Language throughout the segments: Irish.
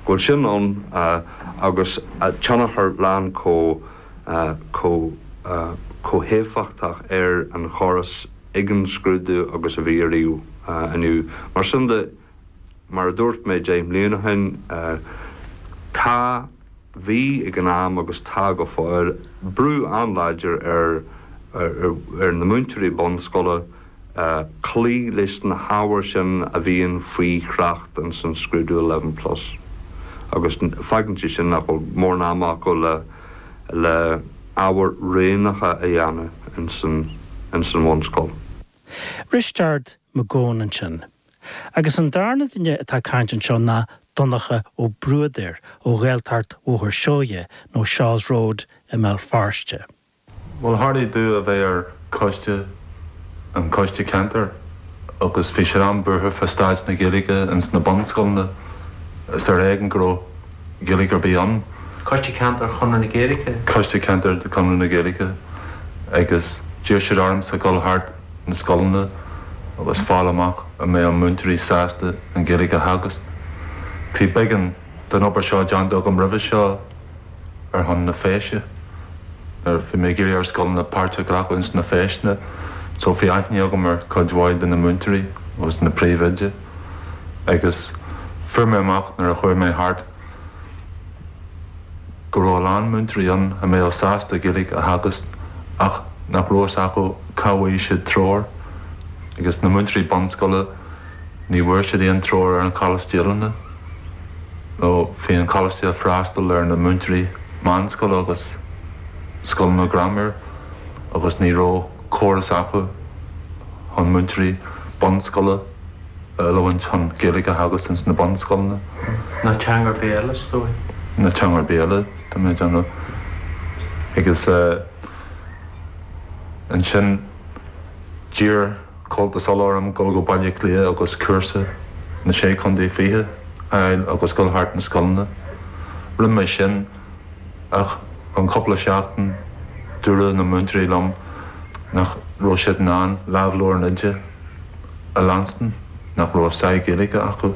go bhfuil sin ann agus tionchar lán chomh héifeachtach ar an chóras ag an scrúdú agus a bhí ariamh inniu. Mar sin de, mar a dúirt mé deich mbliana ó shin, tá, bhí ag an am agus tá go fóill, brú an-láidir ar na múinteoirí bunscoile, cloí leis na hábhair sin a bhíonn faoi thrácht ins an scrúdú eleven plus agus fágann sé sin nach bhfuil mórán ama acu le ábhair roghnacha a dhéanamh ins an bhunscoil. Risteard Mac Gabhann ansin. Agus an darna duine atá ag caint anseo ná Donncha Ó Bruadair ó Ghaeltacht Bhóthar Seoighe nó Shaw's Road i mBéal Feirste. Bhuel, tharlaigh domh a bheith ar choiste, an coiste ceantair agus bhí siad an-bhuartha fá staid na Gaeilge ins na bunscoileanna. Is ar éigean go raibh Gaeilge ar bith ann. Coiste Ceantair Chonradh na Gaeilge? Coiste Ceantair de Chonradh na Gaeilge. Agus d'iarr siad ormsa dhul thart na scoileanna agus fáil amach an mbeadh an múinteoirí sásta an Ghaeilge a theagasc. Bhí beagán. Bhí an obair seo déanta agam roimhe seo ar shon na Feise, nuair a bhí mé ag iarraidh ar scoileanna páirt a ghlacadh ins na Feiseanna, so bhí aithne agam ar cuid mhaith de na múinteoirí agus na príomhoidí agus fuair mé amach nuair a chuaigh mé thart go raibh a lán múinteoirí ann a mbeadh sásta Gaeilge a theagasc ach nach raibh fhios acu cá bhfaigheadh siad treoir agus na múinteoirí bunscoile Ní bhfuair siad aon treoir ar an Coláiste Oiliúna nó bhí an Coláiste ag freastal ar na múinteoirí meánscoile agus scoileanna grammar agus ní raibh córas acu chun múinteoirí bunscoile a oiliúint chun Gaeilge a theagasc ins na bunscoileanna. Na teanga béil, is dóigh. Na teanga béil, tá mé ag déanamh agus ansin d'iarr. Comhaltas Uladh orm dul go Baile Átha Cliath agus cúrsa na Sé Chontae Fichead a fháil agus dul thart na scoileanna. Rinne mé sin ach an cúpla seachtain dúirt na múinteoirí liom nach raibh siad in ann lámhleabhar an oide a leanstan, nach raibh sáith Gaeilge acu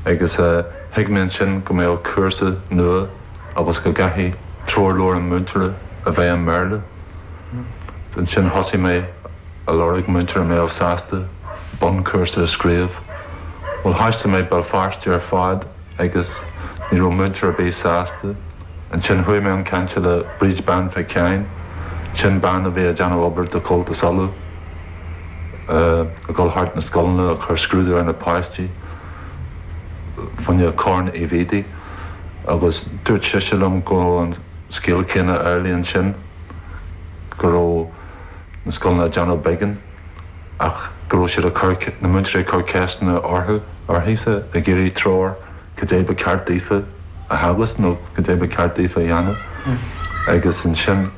agus thuig mé ansin go mbeadh cúrsa nua agus go gcaithfeadh treoirleabhar an mhúinteora a bheith i mBéarla. Ansin thosaigh mé. a lorg, múinteoir a mbeadh, sásta bunchúrsa a scríobh. Bhuel, thaistil mé Béal Feirste ar fad agus ní raibh múinteoir ar bith sásta. Ansin chuaigh mé chun cainte le Bríd Bean Mhic Sheáin, sin bean a bhí ag déanamh obair do Chomhaltas Uladh, ag dul thart na scoileanna ag cur scrúdú ar na páistí faoin Chorn Uí Mhuirí agus dúirt sise liom go raibh an scéal céanna ar leith ansin, go raibh. na scoileanna ag déanamh beagán ach go raibh siad ag cur, na múinteoirí ag cur ceisteanna uirthise, ag iarraidh treoir cad é ba ceart daofa a theagasc nó cad é ba ceart daofa a dhéanamh agus ansin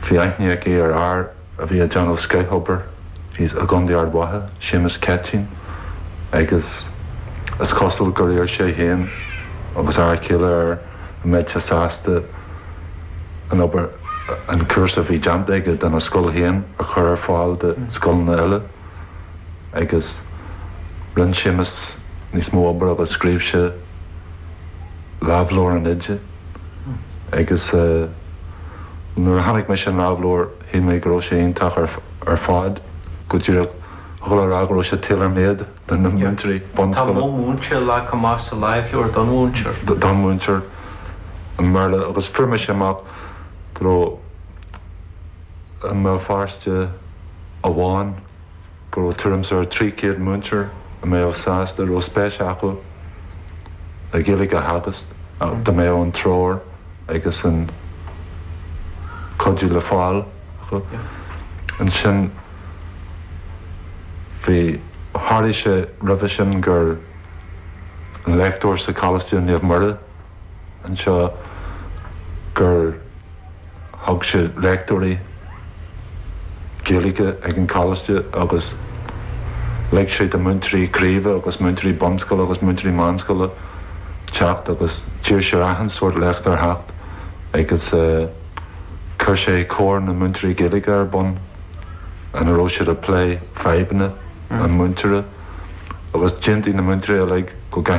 bhí aithne aici ar fhear a bhí ag déanamh scothobair i gContae Ard Mhacha, Séamus Ceitín agus is cosúil gur iarr sí féin agus a fear céile air. an mbeadh sé sásta an obair, an cúrsa a bhí déanta aige dona scoil féin a chur ar fáil do scoileanna eile? Agus rinne Séamus níos mó obair agus scríobh sé Lámhleabhar an Oide. Agus nuair a chonaic mise an lámhleabhar shíl mé go raibh sé iontach ar fad, go díreach dhul a rá go raibh sé tailor-made. do na múinteoirí bunscoile. Tá mo mhúinteoir lag go maith sa láimhsciúrd, don mhúinteoir. don mhúinteoir i mBéal agus fuair mise amach go raibh i mBéal Feirste amháin go raibh tuairim is ar 300 múinteoir a mbeadh sásta, a raibh spéis acu le Gaeilge a theagasc dá mbeadh an treoir agus an cuidiú le fáil acu. Ansin. Bhí, tharlaigh sé roimhe sin gur, an léachtóir sa Choláiste Naomh Muire anseo, gur thug sé léachtaí Gaeilge ag an Choláiste agus lig sé do mhúinteoirí craoibhe agus múinteoirí bunscoile agus múinteoirí meánscoile teacht agus d'iarr sé ar achan sórt léachtóir theacht agus eh chuir sé Comhar na Múinteoirí Gaeilge ar bun. ina raibh siad ag plé fadhbanna an mhúinteora agus d'aontaigh na múinteoirí uilig go gcaithfidh